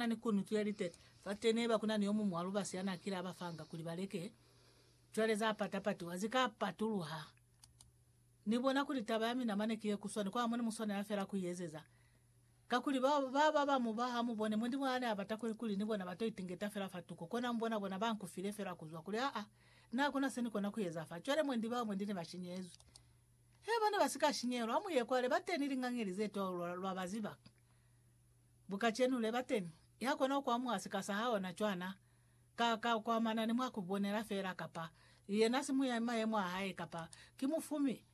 Na ni kunutu ya litete fate neba kuna ni yomuñwi wa lubasi ya na kile aba fanga kuli ba leke. Cwale za pata patiwa zi ka patuluha. Ni bona kuli taba ya mina mane ki ye kuswani kwa hamoni mu swanela fela ku iezeza. Kakuli ba baba ba mu ba ha mu bone Mulimu ha ne a bata kuli, kuli ni bona ba to itingeta fela fa tuko. Kona mu bona bona ba nku file fela kuzwa kuli, aa, na hakuna se ni kona ku eza fa. Cwale mwendi bao mwendi ne ba shinyezwi. Hee, ba ne ba si ka shinyehelwa. Ha mu ye kwale, ba teni lingañeli ze twa lwa, lwa ba ziba. Bu kacenu le bateni ya kona ku amuha sika sa haona cwana ka ka ku amana ni mwa ku bonela fela, kapa yena simu ya mayemo a hae, kapa ki mufumi,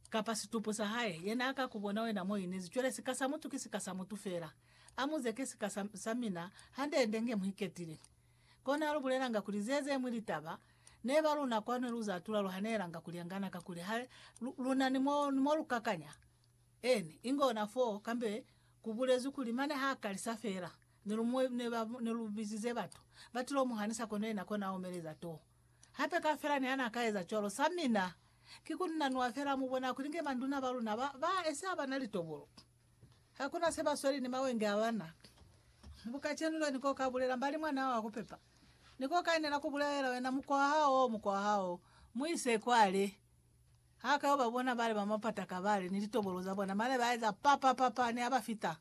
kapa situpu sa hae. Yena a ka ku bona wena mo inezi. Cwale sika sa mutu ki sika sa mutu fela. Amuze ki sika sa, sa mina, hande-hande nge mu iketile. Kona lu bulelanga kuli ze zeñwi litaba, ne ba luna kwanu lu za tula lu hanelanga kuli angana kakuli ha lu, luna ni mo, ni mo lu kakanya. N. Inge ona fo, kambe ku bulezwi kuli, mane ha kalisa fela, ne lu mu, ne ba, ne lu bizize batu. Ba tilo mu hanisa kono yena kona a omeleza to. Hape ka fela ni hana ka eza cwalo. Sa mina, ki ku nanua fela, mu bona kuli nge manduna ba luna ba, ba esi ha bana litobolo. Hakuna se ba sweli ni mawenge a bana. Mu kacenu lyo, Ni ko ka bulela mbali mwana wa ku pepa. Ni ko ka inela ku bulelela wena mukwa hao, mukwa hao. Mu ise kwale. Ha ka yo ba bona bale ba mapata kabale ni litobolo za bona, mane ba eza pa pa pa pa, ne a ba fita,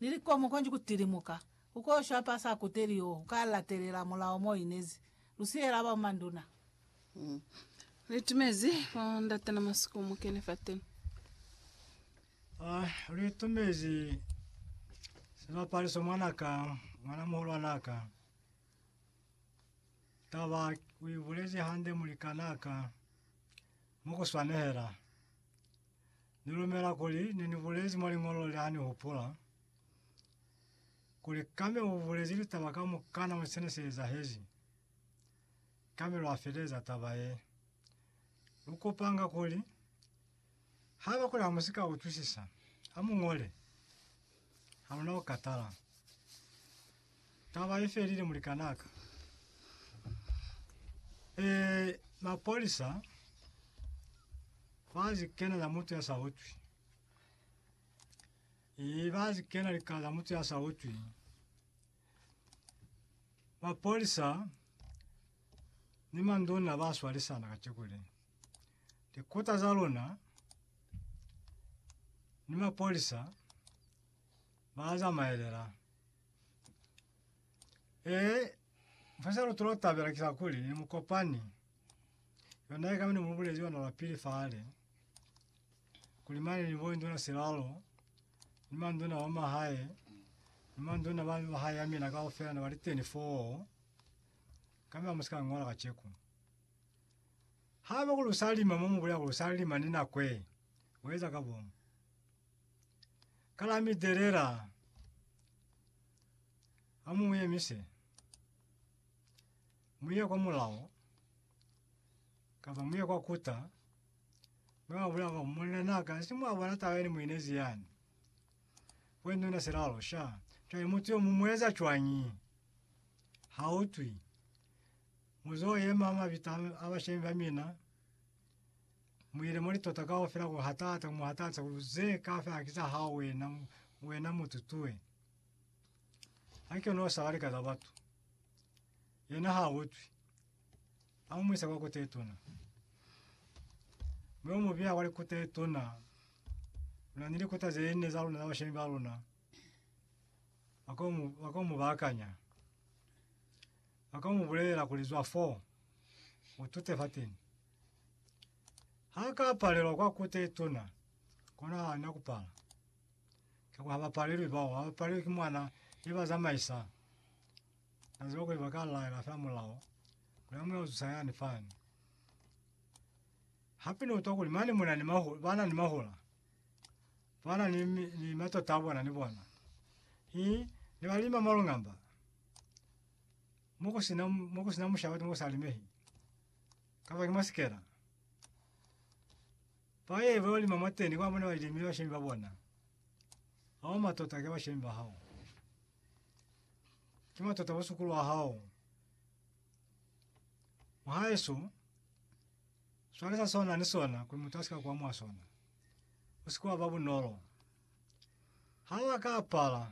ni likomu konji ku tilimuka. U ko shwa pa sa kuteli yo u ka latelela mulao mo inezi. Lu siyela ba manduna. Li tumezi fa ndate na masiku mu kene fateni. Ah, li tumezi sibapaliso mwana ka, mwana muhulwana ka. Taba uibulezi hande mulikanaka mukuswanehela. Nilumela kuli nenibulezi mwa liñolo le hanihupula kuli Kame ubulezi litaba kamukana mwa sene seezahezi. Kame lwafeleza taba ye. Lukupanga kuli Ha bakuli ha mu si ka utwisisa, ha mu ñole. Ha mu na ku katala. Taba i felile, mulikan'a ka. Eh, mapolisa ba zikena za mutu ya sa utwi. Eh, ba zikena likala za mutu ya sa utwi. Mapolisa ni manduna ba swalisana kaciko le. Likota za luna ni mapolisa ba zamaelela. E, mfasa lutu lo tabela kisa kuli ni mukopani. Yona ika mini mubulezi yona la pili fale. kuli mane ni boinduna silalo ni manduna ba mahae ni manduna ba mahae ya mina kaufela na bali 24 kami amusika ngola kacheku haba kulusalima mo mubulela kulusalima ni nakwe weza ka bomu kala midelela amuye mise muye kwa mulao kaba muye kwa kuta Mwabula kwa monna na ka si mwa bona taba yene mu inezi yani. Kwe nuna se la losha. Cwale mutu yo mu mueza cwangi. Ha utwi. Muzo ye mama bita abashemi ba mina. Mwile moli tota ka ofela ku hatata mu hatata ku ze ka fe akisa ha wena wena mutu tuwe. Anke no sa wali ka za batu. Yena ha utwi. A mu isa kwa kota ye tuna. Mi u mu biha kwa likota ye tuna. Luna ni likota ze ne za luna za bashemi ba luna. Ba ko mu, ba ko mu bakanya. Ba ko mu bulela kuli zwa fo, u tute fateni. Ha ka palelwa kwa kota ye tuna, kona ha na ku pala. Ka kwa ha ba palelwi bao, ha ba palelwi ki mwana ye ba zamaisa. Kanzima kuli baka laela fela mulao, kuli ha muna uzusa yani fani. Hape ni utwa kuli mane muna ni mahula, bana ni mahula. Bana ni, ni matota bona ni bona. Hi, ni balima malungamba. Muku sina, muku sina mushaba ni musa limehi. Kaba ni masikela. Paye bo lima mateni kwa muna balimi wa shemba bona. Hao matota ke wa shemba hao. Ki matata bosukulu wa hao. Mwahaeso, swale sa sona ni sona kuli mutu asika kwa mwa sona. Usikuwa ba bunolo. Ha wa ka apala